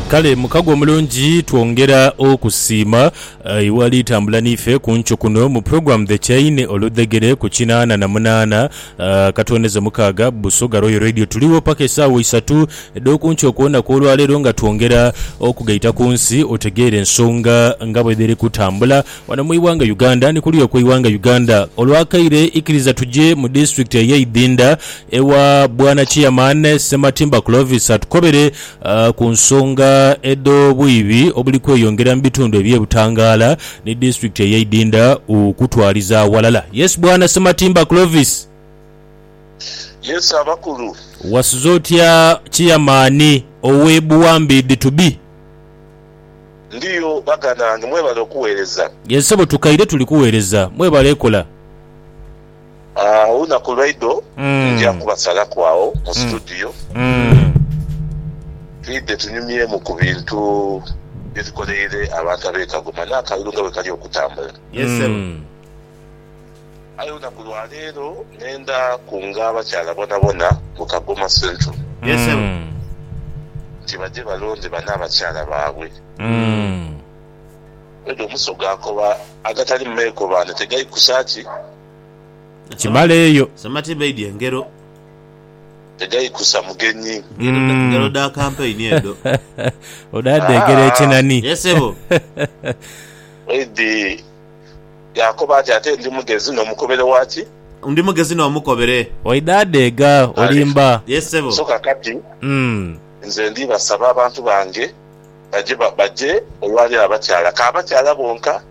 Kale mukago omulungi twongera okusiima iwe ali tambula niife ku nkyo kuno mu program The Chain oludhegere ku kinaana na munaana akatwoneza mukaaga Busoga Royal Radio. Tuligho paka esaawa isatu edhoku nkyo okwona kwolwaleero nga twongera okugaita ku nsi otegeere ensonga nga bwedhiri kutambula. Wano mu ighanga Uganda ni kuluya okwe ighanga Uganda olwakaire ikiriza tuje mu disitulikiti eye Idinda ewa bwana Chairman Ssematimba Clovis atukobere ku nsonga edho bwiibi obuli kweyongera mu bitundu ebye Butangala ni disitulikiti eye Idinda okutwaliza awalala. Yes bwana Ssematimba Clovis. Yes abakulu. Wasuze otya Chairman owe Buwambe Iditubi. Ndiyo baganange mwebale okuwereza. Ye ssebo tukaire tuli kuwereza mwebale kola. Aah olunaku lwaido nja kubasalaku agho mu studio twidhe tunyumyemu ku bintu bye tukoleire abantu abe Kagoma n'akalulu nga bwe kali okutambula. Aye olunaku lwa leero nenda kunga abakyala bonabona mu Kagoma Central nti baje balonde bane abakyala baabwe. Edho omusoga akoba agatali mu meekobaane tegaikusa ki? Kimala eyo. Samati baidya engero. Tegaikusa mugenyi. Ngero dha kampeyini edho. Odha dheegera ekinani. Ye sebo. Edhi. Yaakoba ati, Ate ndi mugezi n'omukobere wa ki? Ndi mugezi n'omukobere. Oidhaadheega olimba. Yee ssebo. So kaakati nze ndibasaba abantu bange baje, baje olwa leero abakyala, ka abakyala bonka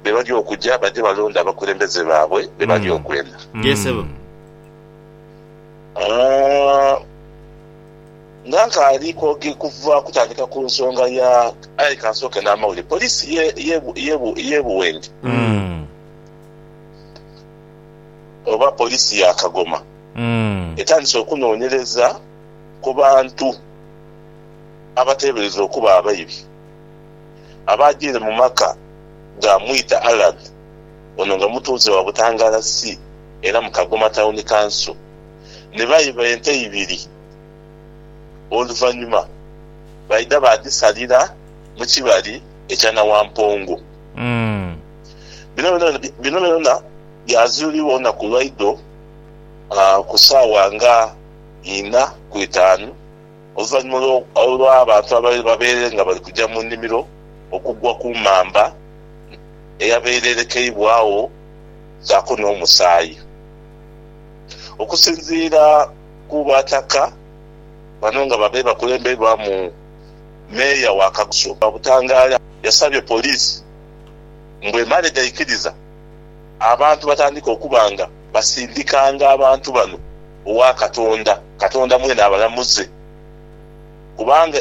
be bali okuja, baje balonde abakulembeze baabwe be bali okwenda. Yee ssebo. Aa. Nga nkaali kwoge kuva kutandika ku nsonga ya aye kansooke n'amawulire. Poliisi ye ye ye ye Buwenge Mm. oba poliisi ya Kagoma Mm. etandise okunoonyereza ku bantu abateeberezebwa okuba abaibi abaagiire mu maka ga Mwita Allan ono nga mutuuze wa Butangaala C era mu Kagoma Town Council. ne baiba ente ibiri. Oluvannyuma baidha baadhisalira mu kibali ekya Nawampongo. Bino byonabyona byazuulibwa olunaku lwaidho ku saawa nga inha ku itaanu, oluvannyuma olw'abantu abaali babaire nga bali kuja mu nimiro okugwa ku mamba eyabaire erekeibwagho saako n'omusaayi. Okusinziira ku Bataka bano nga babaire bakulemberwamu Meeya wa Kagusu Babutangaala yasabye Poliisi mbu emale gaikiriza abantu batandike okuba nga basindikanga abantu bano owa Katonda, Katonda mwene abalamuze kubanga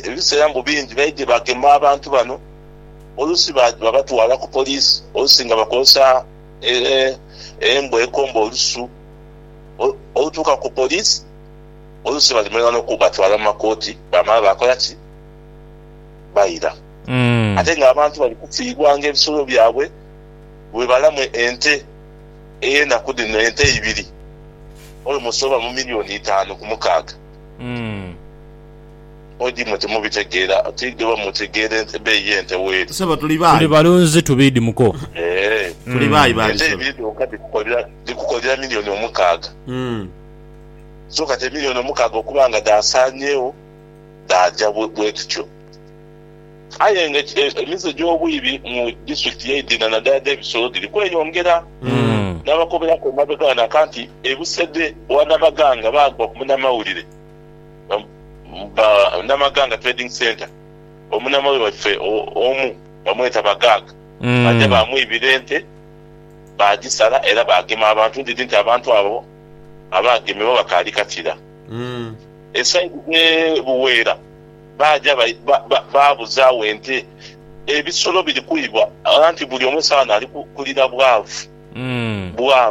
ebiseera mbu bingi baidhye bagema abantu bano oluusi babatwala ku Poliisi oluusi nga bakozesa. Ee, embwa ekomba olusu olutuuka ku poliisi, oluusi balimanha n'okubatwala mu makooti baamala baakola ki? Baira. Ate ng'abantu bali kufiirwanga ebisolo byabwe bwe balamu ente ey'enaku dhino, ente ibiri olomosi oba mu miliyooni itaanu ku mukaaga. Odi mwe timubitegeera oti ghe bamutegeera ebeeyi y'ente weeri. Sebo tuli baayi. Tuli balunzi tubiidi muko. Eeh ente ibiri dhonka dhikukolera milioni omukaaga. So kati emilioni omukaaga okuba nga dhaasaanyeegho dhaaja bwedhityo. Aye nga emize gy'obwiibi mu disiturikiti ye Idhina nadala dh'ebisolo dhiri kweyongera. Nabakoberaku emabega ghano aka nti e Busede owa Nabaganga baagwa ku munamawulire. Namaganga Trading Centre, omunamawe waife omu bamweta Bagaaga baja baamwibira ente baagisala era baagema abantu. Ndidhi nti abantu abo abaagemebwa bakaali kakira. E sayidi dhe Buweera baaja baabuzaawo ente, ebisolo biri kwibwa anti buli omu esawa naali kulira bwavu.